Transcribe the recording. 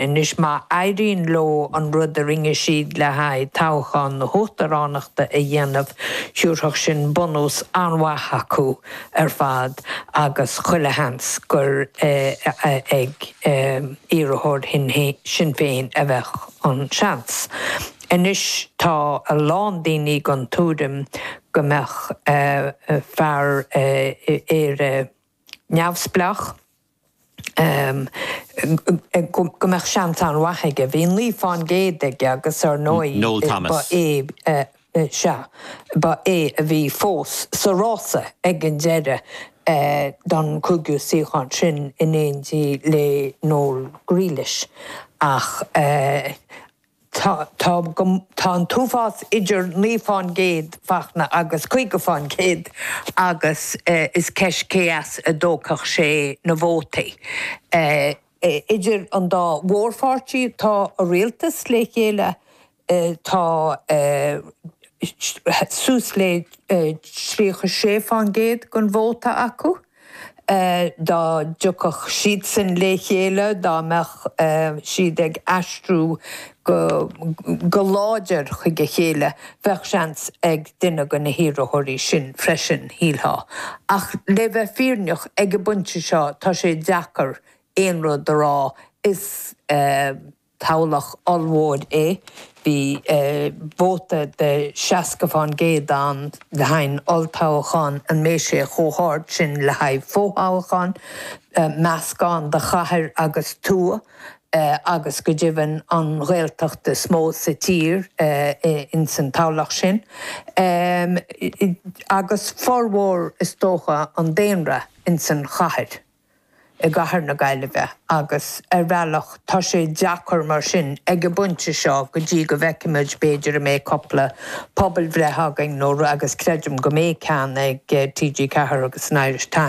Anois má éiríonn leo an rud a rinne siad le haghaidh toghchán na huachtaránachta a dhéanamh, thiúrfadh sin bunús an-mhaith dóibh ar fad agus chuile sheans gur ag iarrthóir Shinn Féin a bheadh an seans. Anois tá a lán daoine den tuairim go mbeadh fear Éire neamhspleách, go mbeadh seans an-mhaith aige. Bhí naoi fán gcéad aige agus ar ndóigh ba é, sea, ba é a bhí fós sa rása ag an deireadh don chúigiú suíochán sin in éindí le Noel Grealish ach, Tá an t-uafás idir naoi fán gcéad Fachtna agus caoga fán gcéad agus is í an cheist cé as a dtiocfadh sé na vótaí. Idir an dá mhórpháirtí atá i rialtas le chéile tá suas le tríocha sé fán gcéad den vóta acu. dá dtiocfadh siadsan le chéile, dá mbeadh siad ag aistriú go láidir chuig a chéile, bheadh seans ag duine de na hiarrthóirí sin freisin, shílfeá. Ach le bheith fírinneach, ag an bpointe seo tá sé deacair aon rud a rá. Is. Toghlach ollmhór é, bhí vóta de 60 fán gcéad ann le haghaidh an olltoghcháin, an mbeidh sé chomh hard sin le haghaidh fothoghcháin? Meascán de chathair agus tuath agus go deimhin an Ghaeltacht is mó sa tír ins an toghlach sin agus formhór is dócha an daonra ins an chathair. i gcathair na Gaillimhe agus, ar bhealach, tá sé deacair mar sin ag an bpointe seo go dtí go bhfeicfimid b'fhéidir an mbeidh cúpla pobalbhreith againn nó rud agus creidim go mbeidh ceann ag TG4 agus an Irish Times.